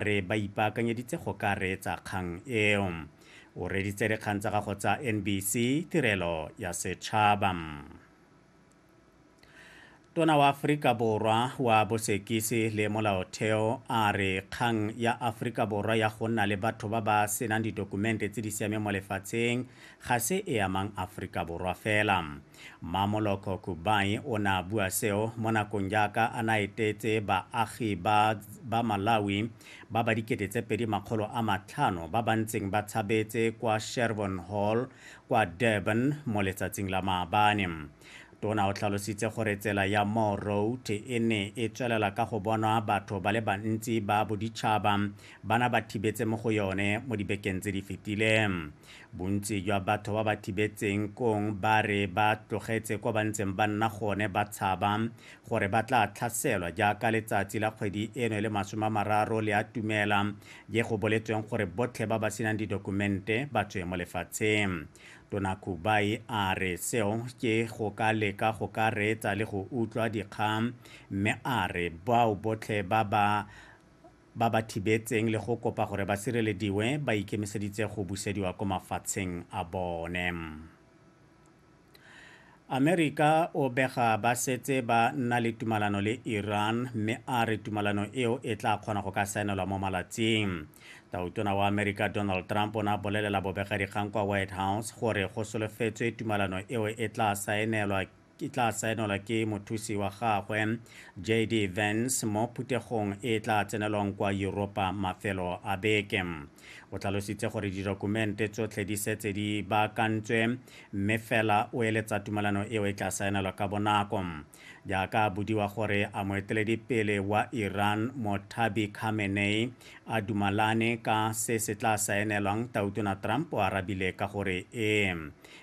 re ba ipaakanyeditse go ka reetsa kgang eo. O reditse dikgang tsa gago tsa NBC tirelo ya setšhaba. Tona wa Aforika Borwa wa bosekisi le molaotheo a re kgang ya Aforika Borwa ya go nna le batho ba ba senang didokumente tse di siameng mo lefatsheng ga se e amang Aforika Borwa fela. Mmamoloko Kubayi o ne a bua seo mo nakong jaaka a ne a etetse baagi ba ba Malawi ba ba dikete tse pedi makgolo a matlhano ba ba ntseng ba tshabetse kwa Sherborn Hall kwa Durban mo letsatsing la maabane. Tona o tlhalositse gore tsela ya Moore Road e ne e tswelela ka go bonwa batho ba le bantsi ba boditšhaba ba na ba thibetse mo go yone mo dibekeng tse di fetileng. Bontsi jwa batho ba ba thibetseng kong ba re ba tlogetse kwa ba ntseng ba nna gone ba tshaba gore ba tla tlhaselwa jaaka letsatsi la kgwedi eno le masome a mararo le a tumela je go boletsweng gore botlhe ba ba senang didokumente ba tswe mo lefatsheng. Tona Kubai a re seo ke go ka leka go ka reetsa le go utlwa dikgang mme a re bao botlhe ba ba ba ba thibetseng le go kopa gore ba sirelediwe ba ikemiseditse go busediwa ko mafatsheng a bone. Amerika o bega ba setse ba nna le tumalano le Iran mme a re tumalano eo e tla kgona go ka saenelwa mo malatsing. Tautona wa Amerika Donald Trump o ne a bolelela bobegadikgang kwa White House gore go solofetswe tumalano eo e tla saenelwa e tla saenelwa ke mothusi wa gagwe JD Vance mo phuthegong e e tla tsenelwang kwa Europa mafelo a beke. O tlhalositse gore didokumente tsotlhe di setse di baakantswe mme fela o eletsa tumalano eo e tla saenelwa ka bonako. Jaaka a bodiwa gore a moeteledipele wa Iran Mothabi Khamenei a dumalane ka se se tla saenelwang, Tautona Trump o arabile ka gore ee.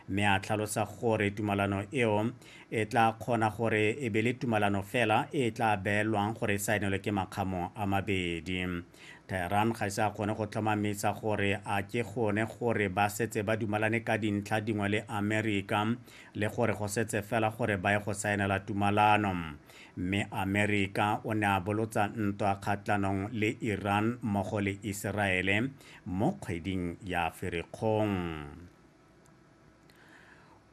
Mme a tlhalosa gore tumalano eo e tla kgona gore e be le tumalano fela e e tla beelwang gore e saenelwe ke makgamo a mabedi. Tehran ga ise a kgone go tlhomamisa gore a ke gone gore ba setse ba dumalane ka dintlha dingwe le Amerika le gore go setse fela gore ba ye go saenela tumalano. Mme Amerika o ne a bolotsa ntwa kgatlhanong le Iran mmogo le Iseraele mo kgweding ya Ferikgong.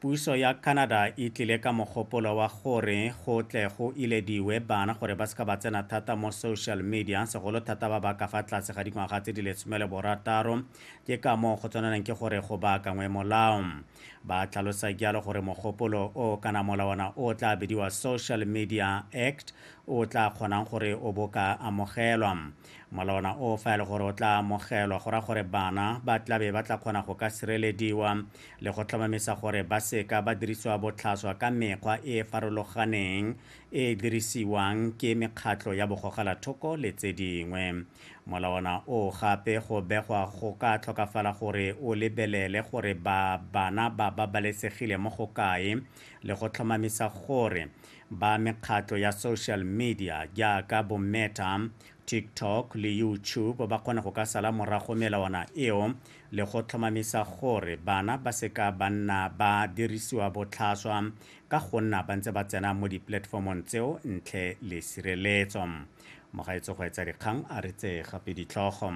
Puso ya Canada e tlile ka mogopolo wa gore go tle go ilediwe bana gore ba seka ba tsena thata mo social media, segolo thata ba ba ka fa tlase ga dingwaga tse di lesome le borataro. Ke ka moo go tshwaneleng ke gore go baakangwe molao. Ba tlhalosa jalo gore mogopolo o kana molawana o tla bidiwa Social Media Act o tla kgonang gore o boka amogelwa. mola ona o fa e le gore o tla amogelwa go ra gore bana ba tlabe ba tla kgona go ka sirelediwa le go tlhomamisa gore ba seka ba dirisiwa botlhaswa ka mekgwa e e farologaneng e e dirisiwang ke mekgatlho ya bogogelathoko le tse dingwe mola ona o gape go begwa go ka tlhokafala gore o lebelele gore ba bana ba babalesegile mo go kae le go tlhomamisa gore ba mekgatlo ya social media jaaka bo Meta, TikTok le YouTube ba kgona go ka sala morago melawana eo le go tlhomamisa gore bana ba seka ba nna ba dirisiwa botlhaswa ka go nna ba ntse ba tsena mo dipolatefomong tseo ntle le sireletso. Mogaetso go etsa dikgang a re tse gape ditlhogo.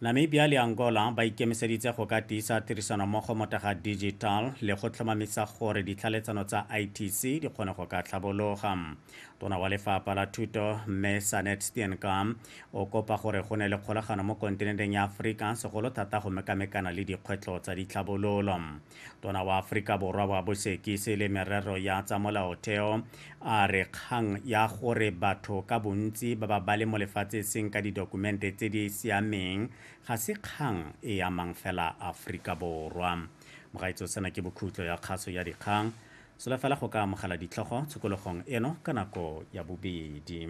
Namibia le Angola ba ikemiseditse go ka tiisa tirisanommogo mo taga digital le go tlhomamisa gore ditlhaletsano tsa ITC di kgone go ka tlhabologa. Tona wa lefapha la thuto Mme Sanet Steenkamp o kopa gore go ne le kgolagano mo kontinenteng ya Aforika segolo thata go mekamekana le dikgwetlho tsa ditlhabololo. tona wa aforika borwa wa bosekisi le merero ya tsa molaotheo a re kgang ya gore batho ka bontsi ba ba ba le mo lefatshe seng ka didokumente tse di siameng ga se kgang e amang fela aforika borwa mogaitso sena ke bokhutlo ya kgaso ya dikgang solafela go ka amogela ditlhogo tshokologong eno ka nako ya bobedi